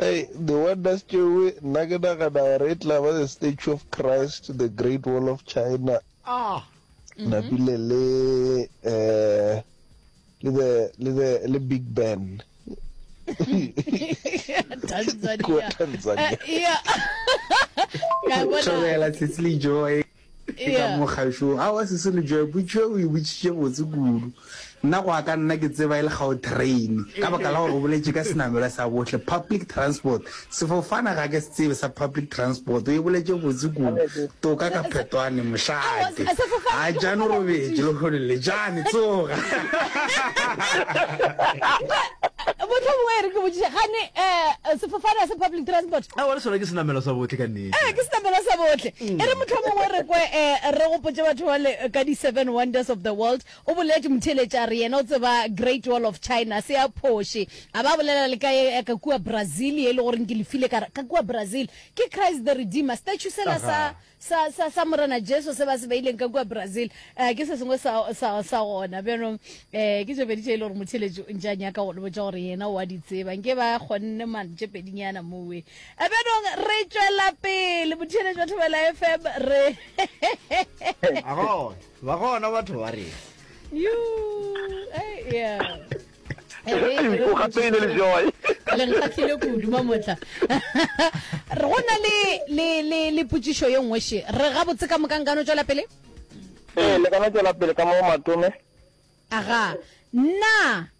Hei, di wonders tšeoe, nna ke nagana gore e tla ba the statue of Christ, the great wall of China, ah. mm-hmm. napile le eh, le the le the le big ben tanzania, tanzania. Uh, yeah. Ke ka moo kgaešo. Aowa sesi re joe potšo eo o e botšitše botse kudu. Nna go a ka nna ke tseba e le Gautrain ka baka la gore o boletše ka senamelwa sa bohle, public transport. Sefofane ga ke se tsebe sa public transport. O e boletše botse kudu. Toka ka phetwane mošate. A jane o robetše lehono le. Jane tsoga. Mohlomongwe e re ke botšiše gane sefofane ga se public transport? Aowa le sona ke senamelwa sa bohle ka nnete. ee ke setamela sa bohle e re mohlomongwe re kwe um re gopotse batho bale ka di-seven wonders of the world o boletše motheeletši a re yena o tseba great wall of china se ya phoše a ba bolela le ka ye ka kua brazil ye e le goreng ke lefile ka ka kua brazil ke christ the redeemer statue sela sa sa sa sa morena jesu se ba se beileng ka kua brazil um ke se sengwe sa sa sa gona bjanong um ke tše pedi tše e le gore motheeletši o ntše a nyaka go le botša gore yena o a di tseba nke ba kgonne mantše pedinyana mowe Ebenong re tšwela pele botheeletši ba Thobela FM re A gona, ba gona batho ba rena. Yo, eh, yeah. Eh, O gapeile le joy. le nkgahlile kudu mamotla Re- go na le le le le potšišo ye nngwe še re gabotse ka moka nkano tšwela pele Ee, le kana tšwela pele ka mo matome. aga na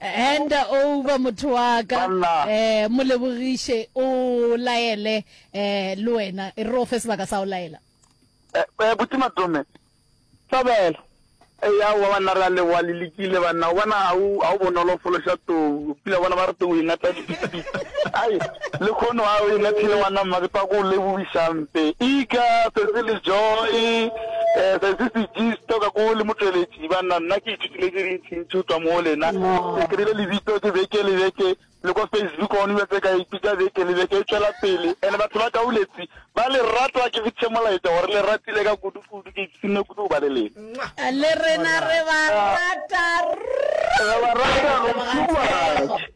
Hand over motho wa ka. Banna. Eh, mo lebogiše o laele eh le wena e re o fe sebaka sa o laela. Eh, eh, buti Matome. Thobela. E ya wa banna re a leboga le lekile banna o bona ga o ga o bonolo go fološa tou pila bona ba re tou e ngata dipitpi ai le kgono ga o e ngathile ngwana mma ke tsa go lebogišampe ika tsatsi le joy um tsatsi se jisto ka ko le motsweletši banna nna ke ithutile tse dintsi Ke ithutwa mo go lena. Ke kry-ile lebitso ke beke le beke, le ko Facebook gone bja tse ka ipitša beke le beke e tšwela pele. And batho ba Kauletsi ba le rata, ke fetise molaetša gore le ratile ka kudu kudu, ke ipshinne kudu go ba le lena. Le rena re ba rata. Re ba rata go too much.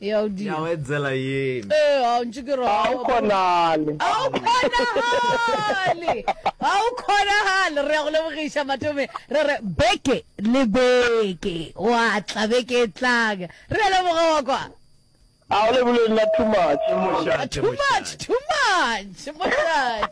ya o dira ya o etsela yena eh a ntse ke ra o khonale a o khonale a o khonale re go lebogisha matome re re beke le beke wa tla beke tlang re le boga kwa a o le bule nna too much too much too much moshate